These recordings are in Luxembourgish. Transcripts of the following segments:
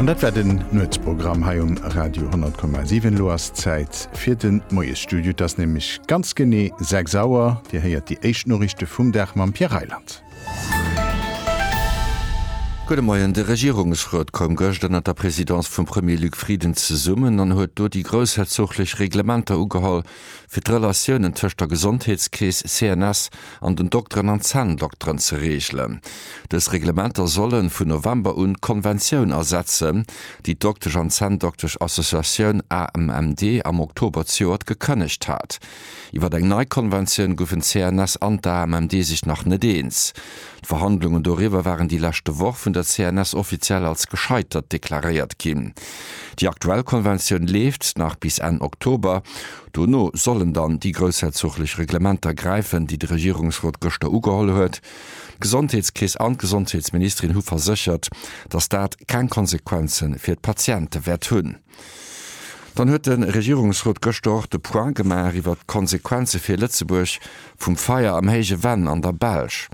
An dat war den Nuetsprogramm hei um Radio 10,7. Elo ass Zäit fir de Moiesstudio. Et ass nämlech ganz genee 6 Auer. Dir héiert déi éischt Noriichte vum Dag mam Pierre Reyland. Gudde Moien. De Regierungsrot koum gëscht ënner der Presidence vum Premier Luc Frieden zesummen an huet do déi groussherzoglich Reglementer ugeholl, fir d'Relatiounen tëscht der Gesondheetskeess, CNS, an den Dokteren an Zänndokteren ze reegelen. Dës Reglementer solle vun November un d'Konventioun ersetzen, déi d'Doktesch an Zänndoktesch Associatioun AMMD am Oktober zejoert gekënnegt hat. Iwwer eng nei Konventioun goufen d'CNS an d'AMMD sech nach net eens. D'Verhandlungen doriwwer waren déi leschte Woch vun der CNS offiziell als gescheitert deklaréiert ginn. Déi aktuell Konventioun leeft nach bis Enn Oktober. Dono sollen dann déi groussherzoglech Reglementer gräifen, déi de Regierungsrot gëschter ugeholl huet. D'Gesondheetskeess an d'Gesondheetsministerin hu verséchert, datt dat keng Konsequenze fir d'Patiente wäert hunn. Dann huet de Regierungsrot gëschter och de Point gemaach iwwert d'Konsequenze fir Lëtzebuerg vum Feier am Héije Venn an der Belsch.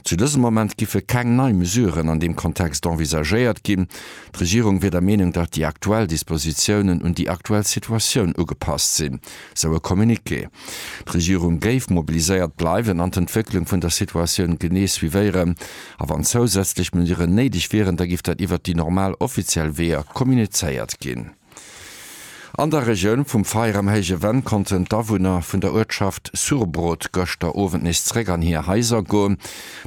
Zu dësem Moment giffe keng nei Mesuren an deem Kontext envisagéiert ginn. D'Regierung wier der Meenung, datt déi aktuell Dispositiounen un déi aktuell Situatioun ugepasst sinn, sou e Communiqué. D'Regierung géif mobiliséiert bleiwen an d'Entwécklung vun der Situatioun genee suivéieren. A wann zousätzlech Mesuren néideg wieren, da giff dat iwwert déi normal offiziell Weeër kommunizéiert ginn. An der Regioun vum Feier am Héije Venn konnten d'Awunner vun der Uertschaft Surbrot gëschter Owend nees zeréck an hir Haiser goen.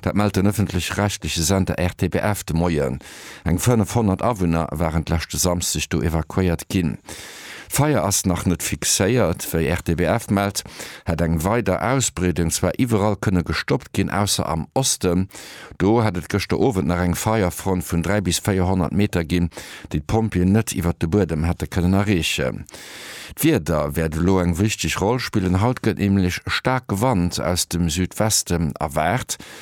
Dat mellt den ëffentlech-rechtleche Sender RTBF de Moien. Eng 500 Awunner waren d'leschte Samsdeg do evakuéiert ginn. D'Feier ass nach net fixéiert. Wéi RTBF mellt, hätt eng weider Ausbreedung zwar iwwerall kënne gestoppt ginn, ausser am Osten. Do hätt et gëschter Owend nach eng Feierfront vun 300 bis 400 Meter ginn, déi d'Pompjeeën net iwwert de Buedem hätte kënnen erreechen. D'Wieder wäert elo eng wichteg Roll spillen. Haut gëtt nämlech staarke Wand aus dem Südweste erwaart.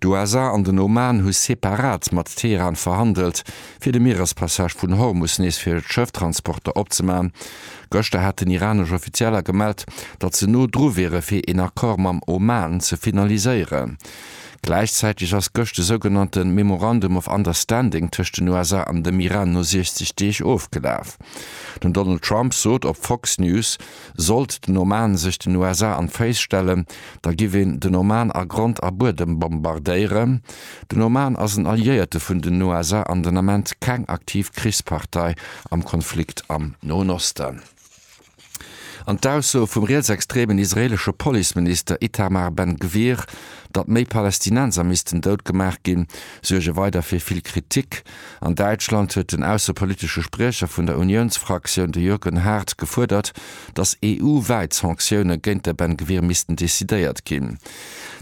D'USA an den Oman hu separat mat Teheran verhandelt, fir de Mierespassage vun Hormus nees fir Schëfftransporter opzemaachen. Gëschter haten iranesch Offizieller gemellt, datt se no dru wiere fir een Accord mam Oman ze finaliséieren. Gläichzäiteg ass gëscht de sougenannte Memorandum of Understanding tëscht den USA an dem Iran no 60 Deeg ofgelaf. Den Donald Trump sot op Fox News, Sollt den Oman sech den USA an d'Féiss stellen, da giff een den Oman a Grond a Buedem bombardéieren. Den Oman ass en Alliéierte vun den USA an den Ament keng aktiv Krichspartei am Konflikt am Noen Osten. An d'Aussoe vum rietsextremen israelesche Policeminister Itamar Ben Gvir, datt méi Palästinenser missten dout gemaach ginn, suerge weider fir vill Kritik. An Däitschland huet den aussepolitesche Spriecher vun der Uniounsfraktioun, de Jürgen Haart, gefuerdert, datt EU-wäit Sanktioune géint de Ben Gvir missten decidéiert ginn.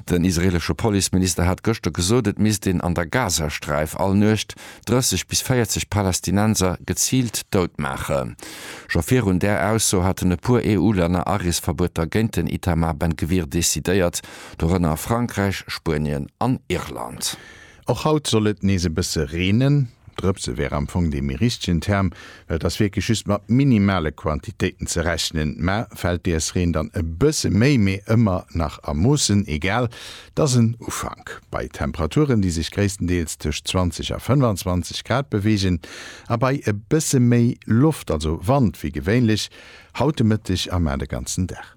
Den israeelesche Policeminister hat gëschter gesot, et misst een an der Gazasträif all Nuecht 30 bis 40 Palästinenser geziilt dout maachen. Scho virun där Ausso haten e puer EU-Länner Areesverbueter géint den Itamar Ben Gvir decidéiert, dorënner Frankräich, Spuenien an Irland. Och haut soll et nees e bësse reenen. Drëpse wär am Fong dee méi richtegen Term, well et ass wierklech just mat minimale Quantitéiten ze rechnen. Mä fält dees Reen dann e bësse méi, mee ëmmer nach a Moossen, egal, et ass en Ufank. Bei Temperaturen, déi sech gréisstendeels tëscht 20 a 25 Grad beweegen a bei e bësse méi Loft, also Wand, wéi gewéinlech haut de Mëtteg a mar de ganzen Dag.